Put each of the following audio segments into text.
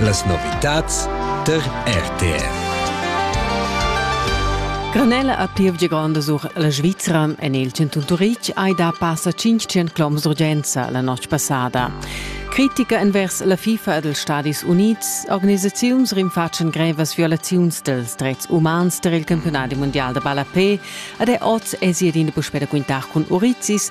Las novitads tar RTR. Granella a Pievgia Granda sur la Svizra en il Centrum Turitg hai da passa 500 km d'urgenza la notg passada. Critica envers la FIFA e dels Stadis Unids, organisaziuns rinfatschen grevas violaziuns dels drets umans tar il campionat mundial da ballapé ed è oz esit in puspè da quintar cun Urizis,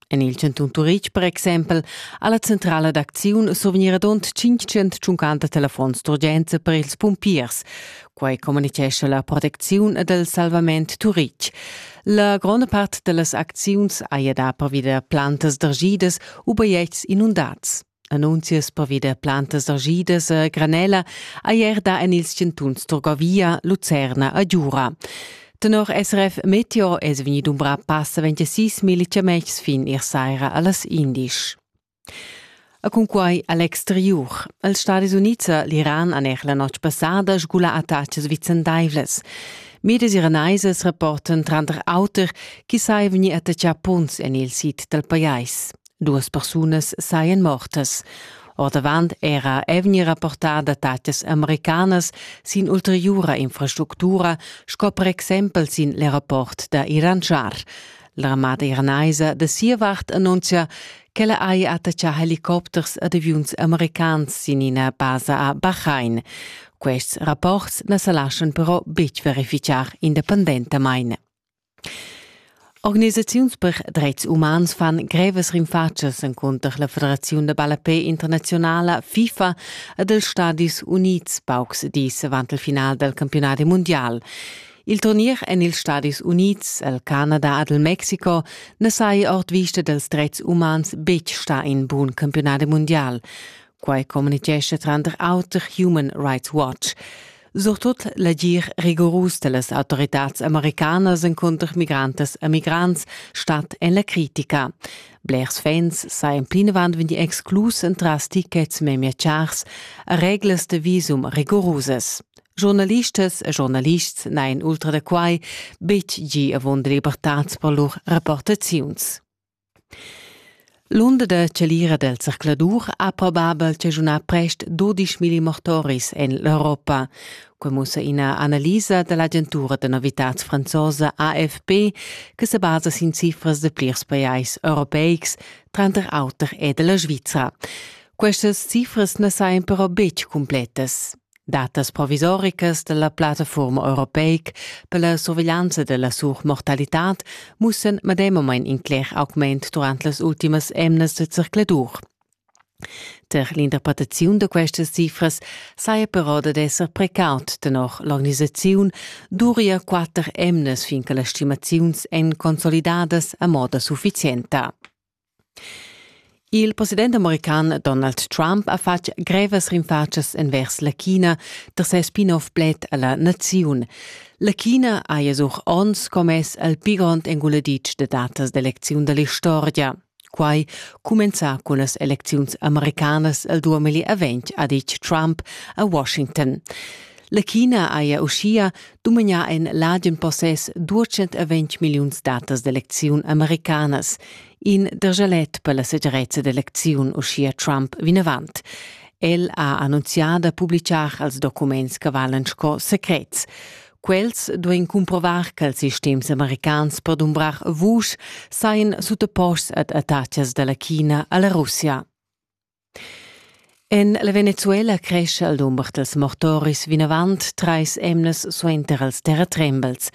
En il chantun Turitg per exempel ha la centrala d'acziun survgniradont 550 telefons d'urgenza per ils pumpiers. Quai communitgescha la protecziun dal salvament Turitg. La gronda part da las acziuns haja dà pervi da plantas dergidas u bajetgs inundats. Annunzias pervi da plantas agidas a granella ei erda en ils chantuns Turgovia, Lucerna e Giura. Tenor SRF Meteo es vegni dumbrà passa 26.000 chamechs fin ir saira a las indisch. A cunquai a l'exteriur. Els Stadis Unids e l'Iran han er la notg passada sgula attacas vicendaivlas. Mides iranaisas rapportan tranter auter chi sai vegni attaccà punts en il sid dal pajais. Duas persunas sajan mortas. Ordavant era evni rapportà datatgas americanas sin ulteriura infrastructura, sco per exempel sin l'aeroport da Iranschar. L'armada iranaisa da sia vart annunzia ch'ella haja attaccà helicopters ad aviuns americans sin ina basa a Bahrain. Quests rapports na sa laschan però betg verificar independentamain. Organisaziuns per dretgs umans fan grevas rinfatschas encunter la Federaziun da ballapè internaziunala FIFA ed els Stadis Unids paucs dis avant il final dal campiunadi mundial. Il turnier en ils Stadis Unids, el Canada ed il Mexico na saja ord vista dals dretgs umans betg stà in bun campiunadi mundial. Quai communitgescha tranter auter Human Rights Watch. Surtut l'agir rigorus dellas autoritads americanas encunter migrantas e migrants stat en la critica. Blers fans sajan plinavant vegnì exclus entras tickets memia chars e reglas de visum rigorusas. Giornalistas e giornalists n'hain ultra da quai betg gì avunda libertads per lur rapportaziuns. L'unda da chalira del zercladur ha probabel chaschunà prest dudisch milli mortoris en l'Europa. Quei mussa ina analisa dall'agentura da novitads franzosa AFP che se basa sin cifras de plirs pajais europeics, tranter auter e della Svizra. Questas cifras na sajan però betg cumpletas. Datas provisoricas dalla plattafuorma europeic per la surveglianza della surmortalitad mussen medemamein in cler augment durant las ultimas emnas de circladur. Per l'interpretaziun da questas cifras saja però dad esser precaut tenor l'organisaziun duria quatter emnas fin che las stimaziuns èn consolidadas a moda sufficienta. Il president american Donald Trump ha fatg grevas rinfatschas envers la China tar ses spin-off pled a la naziun. La China haja sur onns commess al pi grond enguladitsch da datas d'elecziun da l'istorgia. Quai cumenzà cun las elecziuns americanas il duamilli avent, ha ditg Trump a Washington. La China haja uschia dumagnà en l'adium possess 220 milliuns datas d'elecziun americanas. In dergelet per la segirezza d'elecziun, uschia Trump vinavant. El ha annunzià da publitgar els documents che valan sco secrets. Quels duein cumprovar che els sistems americans per dumbrar vusch sajan sutaposts ad attacas dalla China alla Russia. En la Venezuela crescha il dumber dals mortoris vinavant trais emnas suenter els terratrembels.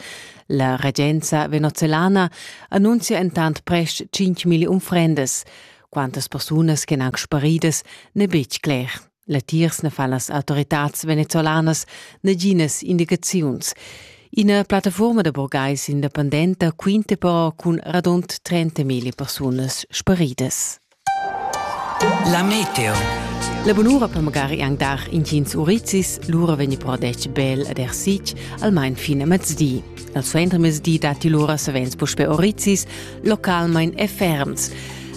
La regenza venezuelana annunzia entant prest 5.000 unfrendas. Quantas persunas che han sparidas n'è betg cler. Latiers ne fa las autoritads venezolanas naginas indicaziuns. Ina plattaforma da burgais independenta quinta però cun radund 30.000 persunas sparidas. La meteo. La bunura per magari anc dar intgins urizis, lura vegni però detg bel ed ersitg, almain fin a mezdi. Al suenter mezdi datti lura savens puspe urizis, localmain e ferms.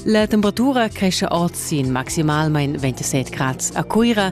La temperatura cresce oz sin maximalmain 27 grads a Cuira